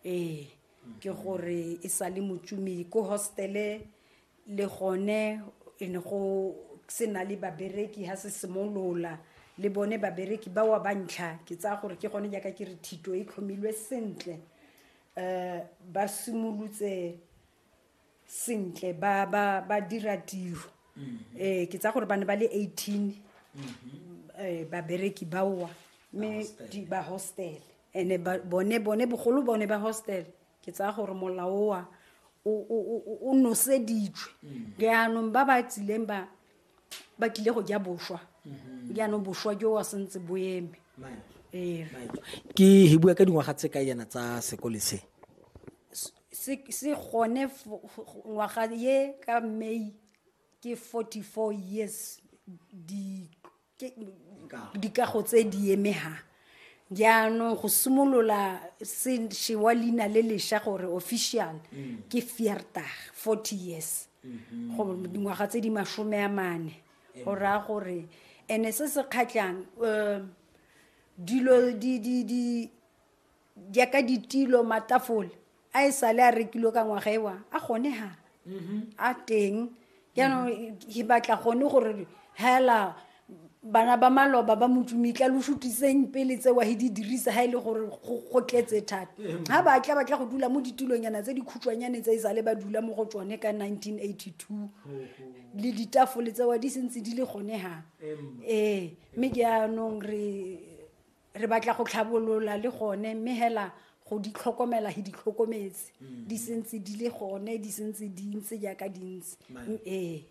ee ke gore e sa le motsumi ko hostele le gone e ne go se na le babereki ga se simolola le bone babereki ba wa bantlha ke tsaya gore ke gone jaaka ke re thito e tlhomilwe sentle um ba simolotse sentle ba ba ba dira tiro eh ke tsa gore ba ne ba le 18 eh babereki baowa mme di ba hostel ene ba- bone bone bogolo bone ba hostel ke tsaya gore molao wa o- o o- o- o noseditswe jaanong ba ba tsileng ba ba tlile go ja boswa mhm. jaanong boswa jo wa sentse bo eme ee. ke he bua ka dingwaga tse ka yana tsa sekole se se gone ngwaga ye ka may ke 44 years dikago tse di emegang jaanong go simolola se shewa leina le lesha gore official ke fiertag forty years go dingwaga tse di masome a mane go raya gore and-e se se kgatlhang um dilo di di di jaaka ditilo matafole a e sale a rekilwe ka ngwaga ewa a gone ha a teng jaanong ke batla gone gore hela bana ba maloba ba motsumitla lo shutiseng pele tsewa he di dirisa ha e le gore go go tletse thata ga ba tla ba tla go dula mo ditilonyana tse di khutshwanyane tse e sale ba dula mo go tsone ka 1982 le ditafole tsewa di sentse di le gone ha ee mme jaanong re re batla go tlhabolola le gone mme hela go di tlhokomela he di tlhokometse mm. di sentse di le gone di sentse di ntse jaaka di ntse ee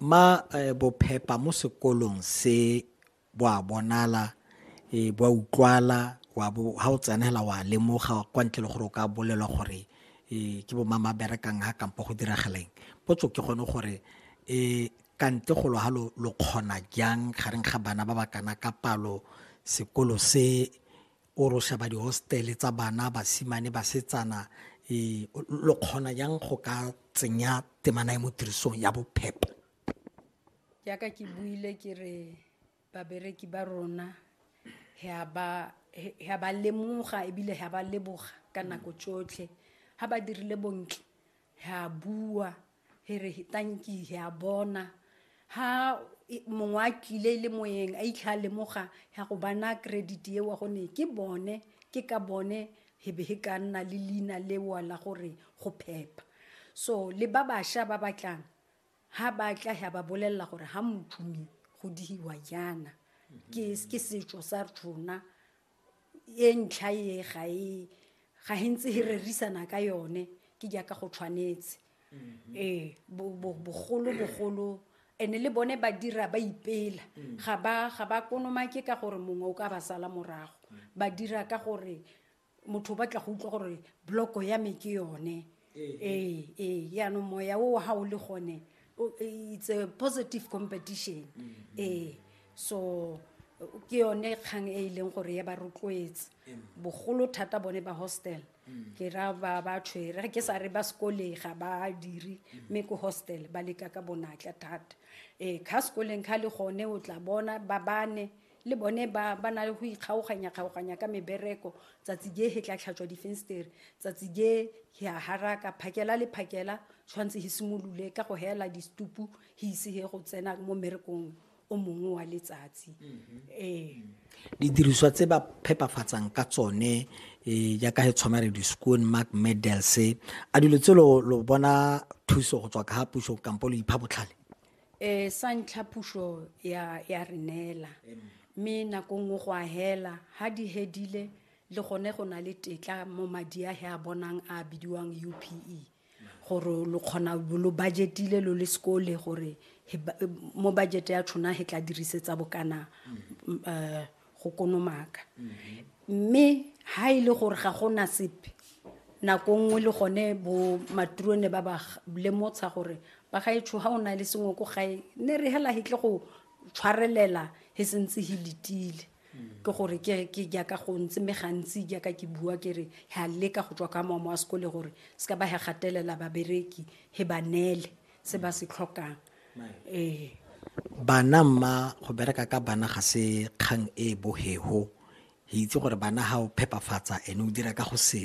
ma eh, bophepa mo sekolong se bo a bonala e bo a utlwala wa bo ha o tsenela wa lemoga kwa ntle le gore o ka bolelwa gore e ke bo mama berekang ha kampo go diragaleng potso ke gone gore e Ka ntle golo halo lo kgona jang gareng ga bana ba ba kana ka palo sekolo se o ro sheba dihostele tsa bana basimane basetsana e, lo kgona jang go ka tsenya temana e mo tirisong ya bophepa jaaka ke buile ke re babereki ba rona ga ba lemoga ebile ga ba leboga ka nako tsotlhe ga ba dirile bontle ga bua he re tanki he a bona ha mongwe a tlile e le moyeng a itlha a lemoga ya go bana credit eo gone ke bone ke ka bone he be he ka nna le leina lewa la gore go phepa so le ba bašwa ba batlang ha ba tla ya ba bolelela gore ha mothume go dihiwa jaana ke setso sa rona e ntlha e ga e ga e ntse e rerisana ka yone ke jaaka go tshwanetse mm-hmm. ee bogolo bogolo ene le bone ba dira ba ipela mm. ga ba ga ba konomake ka gore mongwe o ka ba sala morago mm. ba dira ka gore motho o batla go utlwa gore bloko ya me ke yone ee ee yaanong moya o ga o le gone o- it's a positive competition ee so ke yone kgang e e leng gore ya ba rotloetse bogolo thata bone ba hostel ke ra ba ba tshwere ga ke sa re ba sekoleng ga ba dire mme ko hostel ba leka ka bonatla thata ee kha sekoleng kha le gone o tla bona ba bane le bone ba ba na le go ikgaoganya-kgaoganya ka mebereko tsatsi je he tla tlhatswa difenstere tsatsi je he a haraka phakela le phakela tshwanetse he simolole ka go hela distupu he ise he go tsena mo mmerekong o mongwe wa letsatsi ee didiriswa tse ba phepafatsang ka tsone um jaaka he tshwana re di-scoon mark medals a dilo tse lo lo bona thuso go tswa ka ga puso kampo lo ipha botlhale um sa ntlha puso ya re neela mme nako nngwe go a hela ga di hedile le gone go na le tetla mo madi a he a bonang a bidiwang u p e gore lo kgona lo budgetile lo le sekole gore mo budget ya tshona he tla dirisetsa bokana um go konomaka mme ha e le gore ga go na sepe nako nngwe le gone bo maturone ba ba lemotsha gore ba ga etsho ha o na le sengwe ko gae ne re hela hitle go tshwarelela he sentse he letile ke gore ke jaaka go ntse mme gantsi jaaka ke bua ke re ha leka go tswa ka mamo wa sekole gore se ka ba he gatelela babereki he ba neele se ba se tlhokang ee bana mma go bereka ka bana ga se kgang e bohego itse gore bana ga o phepafatsa ene o dira ka go se